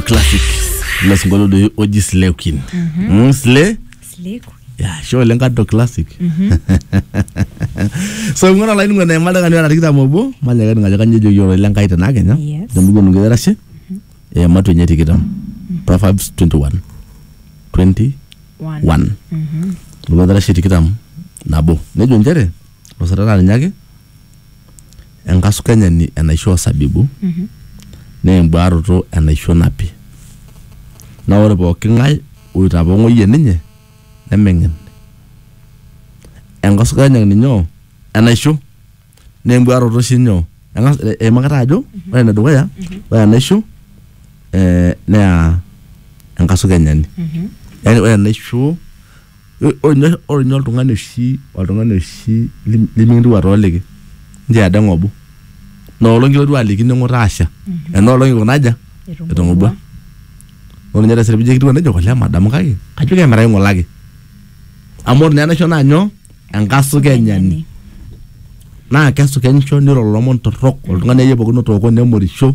classic ilo sinkolio doi oji slay queen Mm, slay Sliku. ya sho oleng kato classic so ing'ura olainining'oni emadakani ora tikitam obo manyaka ening ajo kanyio ejoki ororei le nkai tena kenya Yes. temikonu nkitarashe eematu enye tikitam proverbs 21 20 One. 1 lukatarashe tikitam nabo nejo nchere osatana ninye ake enkasukanyani enaisho osabibu mm -hmm. naa embuaroto enaisho napi naa ore pooki ng'ae oitapong'oyie ninye nemeng'en enkasukanyani ninye enaisho naa embuaroto oshi nyoo eimakita ajo mm -hmm. ore enedukuya mm -hmm. ore enaisho eh, naa enkasukanyani mm -hmm. yani ore enaisho Ore ninye ore ninye oltung'ani oshi oltung'ani oshi lim- lemikirriwua tooliki nchoo edaa eng'obu ina olong kilotu aliki ning'utaa asha ena olong ikuna aja etong'obua ore ninye taisere pijo ekitiu nejia olee madamu kake kajo kemirai ng'ole ake amu ore naa enaisho naa nyoo enkasukenyani naa kesukenisho niro ilomon torrok oltung'ani akeyie pookin otooko nemorisho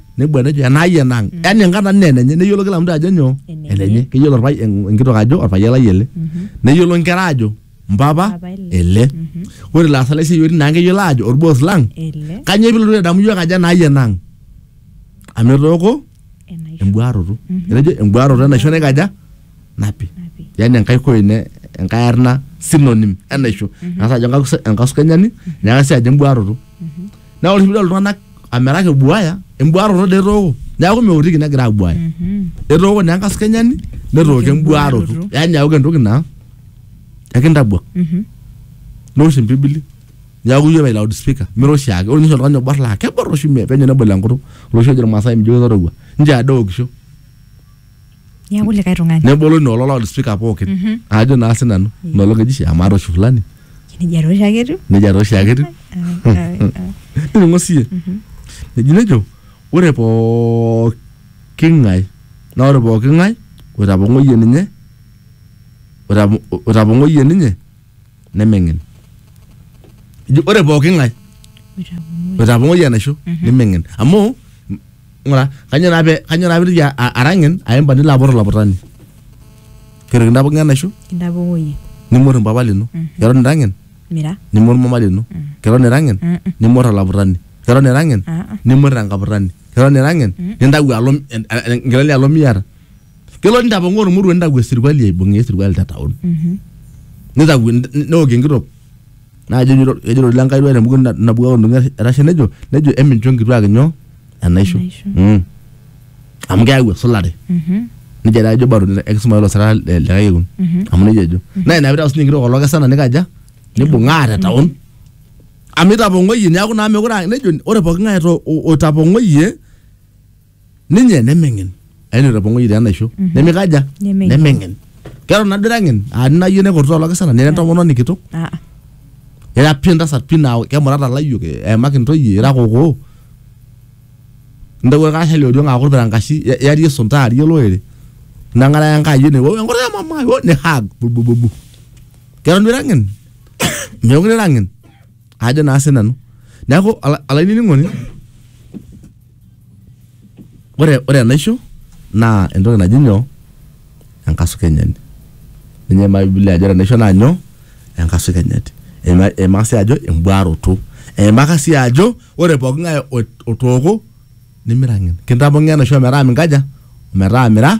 nebu enejo enai enang mm. yani enkata nne enenye neyiolo kila mtu ajo nyoo enenye keyiolo orpai enkitok ajo orpayian lai ele mm -hmm. neyiolo nkera ajo mpapa ele mm -hmm. ore laasak lai siyiori naa keyiolo ajo orboos lang kanyoo pilotu adamu yiok ajo enai enang amu etooko embuaroto mm -hmm. etejo embuaroto enaisho naikaja napi yani enkae koine enkae arna synonym enaisho mm -hmm. nasa ajo enkasukenyani mm -hmm. neeku sii ajo embuaroto mm -hmm. Naa ore oshi pidol iltung'anak amiraki ebuaya, embuaroto doi etooko. Neeku meotiki negira abuaya. Etooko naa enkaskanyani, netooko embuaroto. Embuaroto. Yani eeku entoki naa ekintabuak. Neosh empibili, neeku ijo aitayu loud speaker. Mira oshiake. Ore nye oshi oltung'ani obor la kebor oshi penyo nebol enkutuk. Ore oshi ejo irmaasai mijo ketorogua. Nchoo edaa eokisho. niaku likae tung'ani nebolo ina olo loudspeaker pookin Mhm. ajo naa sinanu ina olong eji shi amaa toshi fulani nejia too oshiake etiu nejia taa oshiake etiu Ah, ah, ah. nining'o siiyie Mhm. eji nejo ore pooki ng'ae naa ore pooki ng'ae oitapong'oyie ninye oitapo- oitapong'oyie ninye nemeng'en eji ore pooki ng'ae Oitapong'oyie. oitapong'oyie enaisho Mhm. nemeng'en amu ng'ura kanyoo naa pe kanyoo naa piitoki a- a- arang'en aimba nilo apot olaputani kiruk intae pookin enaisho intapong'oyie nimor mpapa lino keton irang'en mira nimor mama lino keton irang'en Mm-mm. nimor olaputani keton irang'en Ah-ah. nimor enkaputani keton irang'en nintau alo en- en- nkilani alo miata kelo nintapong'oo ormoruo nintau esirkwali aibung'ie esirkwali te taon Mhm. nitau neok enkitok Naa ejo ejo eitodolie Enkai duo tembuku nabukoki oltung'ani etasha nejo nejo emincho nkituak inyo enaisho. Enaisho. Mm. Amu keyau esulare. Mhm. Neija taa ejo barnot enkisuma oo lasarra le le kekun. Mhm. Amu neija ejo. Naa ina piidol siinye enkitok oo lokesana neikaja? Neibung'aa te taon. Amu eitapong'oyie neeku naa meekure aa nejo ore pooki ng'ae oto oitapong'oyie ninye nemeng'en aini etopong'oyie te enaisho nemikaja Nemeng'en. nemeng'en keton nado ira ng'en aa ninayie nekurtaa olokisana nira entomononi kitok Ah, ah. ira pi entasat pi naa kemurata layiok eemaki ntoyie ira kokoo intawuo irkarasha le oriong aaku irpirankashi i- iarie isunta aarie olorere neng'araya enkai ene "Wou, enkutuk e mama ai, wou," ni hug bubububu keton duo ira ng'en meekure ira ng'en ajo naa sinanu neeku ola- olainining'oni Ore ore enaisho naa entoki naji nyoo? enkasukenyani. Ninye eimaa bibilia ajo ore enaisho naa nyoo? enkasukenyani. Eimaa sii ajo embuaroto. Eimaka sii ajo ore pooki ng'ae otooko nimiraki. Kintamong'oo enaisho metaa minkaja? metaa mira.